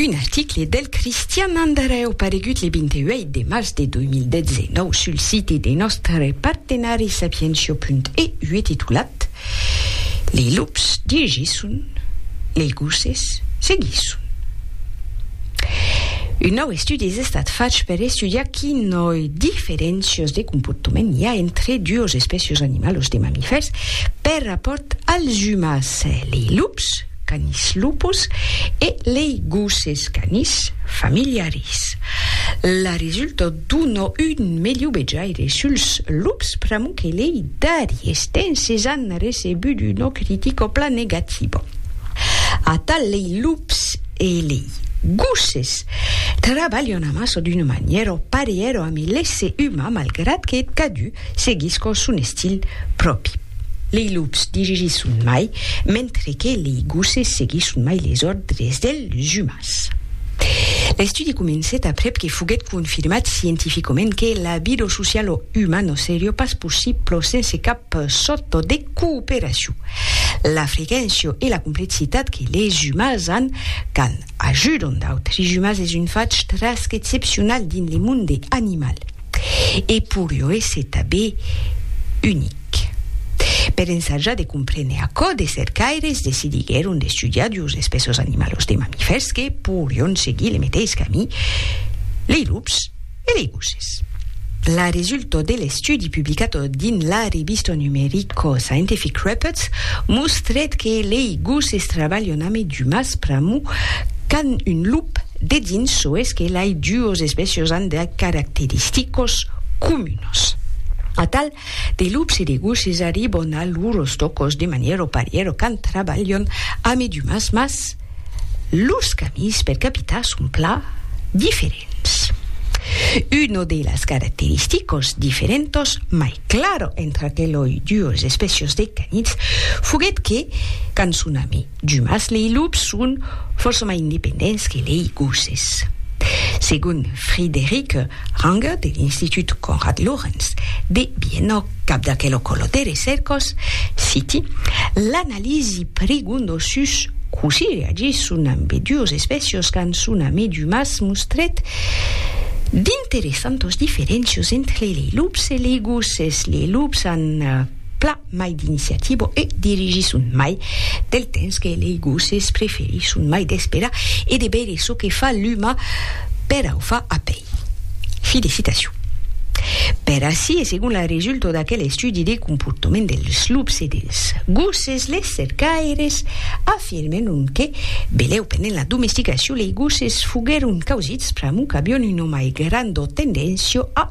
Un article del Cristian Andreu paregut le 28 de març de 2019 sul site de nòstre partenari sapientia.eu titulat Lei lups digisson, lei gosses seguisson. Un nòu estudi es estat fach per estudiar quinòi diferéncias de comportament i a entre duos espècias animalas de mamifèrs per rapòrt als umans, lei lups, Canis lupus, e lei gosses canis familiaris. La resulta dona un melhor vejaire suls lups pr'amor que lei darriers temps es an recebut una critica plan negativa. Atal lei lups e lei gosses trabalhan amassa d'una manièra parièra amé l'èsser umà malgrat que cadun Seguiscon son estil pròpi. Lei lups dirigisson mai, mentre que lei gosses seguisson mai les òrdres dels umans. L'estudi comencèt aprèp que foguèt confirmat scientificament que la bido social o umano serió pas possiblo sense cap sòrto de cooperacion. La frequéncia e la complexitat que les umans an quand ajudon d'autres umans es un fach trasc excepcional dins le monde animal. e pur lo esse tabé unic. Per ensajar de comprene aquò, de cercaires decidiguèron d'estudiar duos espèços animalos de mamifèrs que porion seguir le meteis camí, lei lups e lei gosses. La resulta de l'estudi publicat dins la revista numerica Scientific Reports mostrèt que lei gosses trabalhan amé d'umas pr'amor qu'an un lup dedins soes que lei duos espèços an de caracteristicos comunos. Atal de lups e de gosses arribon a lors tòcos de manièr o parièr quand trabalhon amidumans mas lors camins per capitar son pla diferents. Uno de las caracteristicos diferentos mai claro entre aqueloi duos espècios de canits foguèt que quand son ami, Jumas lei lups son fòrça mai independents que lei gosses. Segon Frideric Ranger de l'Institut Konrad Lorenz de Viena, cap d'aquelo colotè de cèrcos, citi, l'analisi prigonda sus cossí reagisson ambedúas espècias quand son amé jumas mostrèt d'interessantas diferéncias entre lei lups e lei gosses. Lei lups an plan. mai d'iniciativa e dirigisson mai del temps que lei gosses preferisson mai d'esperar e de veire çò que fa l'uma per au fa apei felicitacion per ací e segon la resulta d'aquel estudi de comportament dels lups e dels gosses les cercaires afirmèron que belèu pendent la domesticacion lei gosses foguèron causits pr'amor qu'avion una mai granda tendéncia a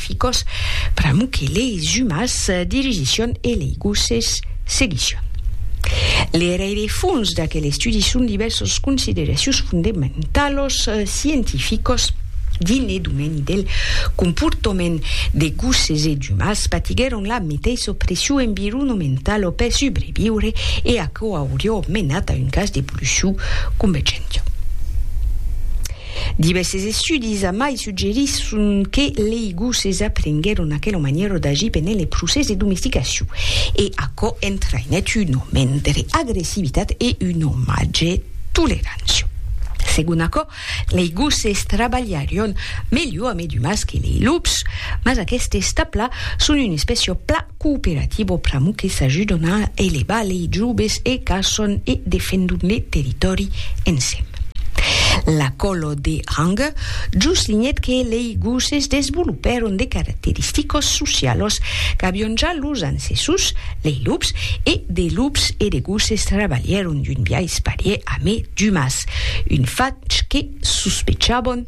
Ficos, pr'amor que leis jumas dirigisson e lei gosses seguisson. Le rerefons d'aquel estudi son divèrsos consideracions fondementalos scientificos dins le domèni del comportament de gosses e d'umans patiguèron la meteissa opression environomentalo per subreviure e aquò aurió menat a un cas d'evolucion convergenta. Divèrses estudis amai suggerisson que lei gosses aprenguèron aquela manièra d'agir pendent lei procès de domesticacion, e aquò entraïnèt un aument de lei agressivitat e una màger tolerància. Segon aquò, lei gosses trabalharion melhor amé d'umans que lei lups, mas aquestes tabla son una espècia plan Cooperativo pr'amor que s'ajudon a elevar lei joves e qu'ason e defendon le territòri ensèm. La còlo de Ranger jos linhèt que lei gosses desvolopèron de caracteristicos socialos qu'avion ja los ancessors, lei lups, e de lups e de gosses trabalhèron d'un biais parièr a me d'umas, un fach que sospechabon.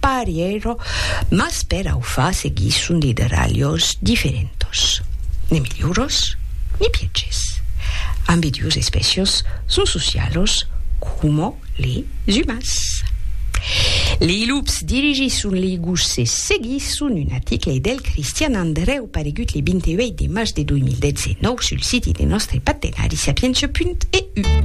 Parièro, mas per au far seguir son lideralhos diferentos, ne milhors ne pièges, ambe duos espècios son socialos coma les umans. Lei lups dirigisson lei gosse seguisson un article del Cristian Andrèu paregut le 28 de març de 2019 sul siti de nòstre partenari Sapientia.eu.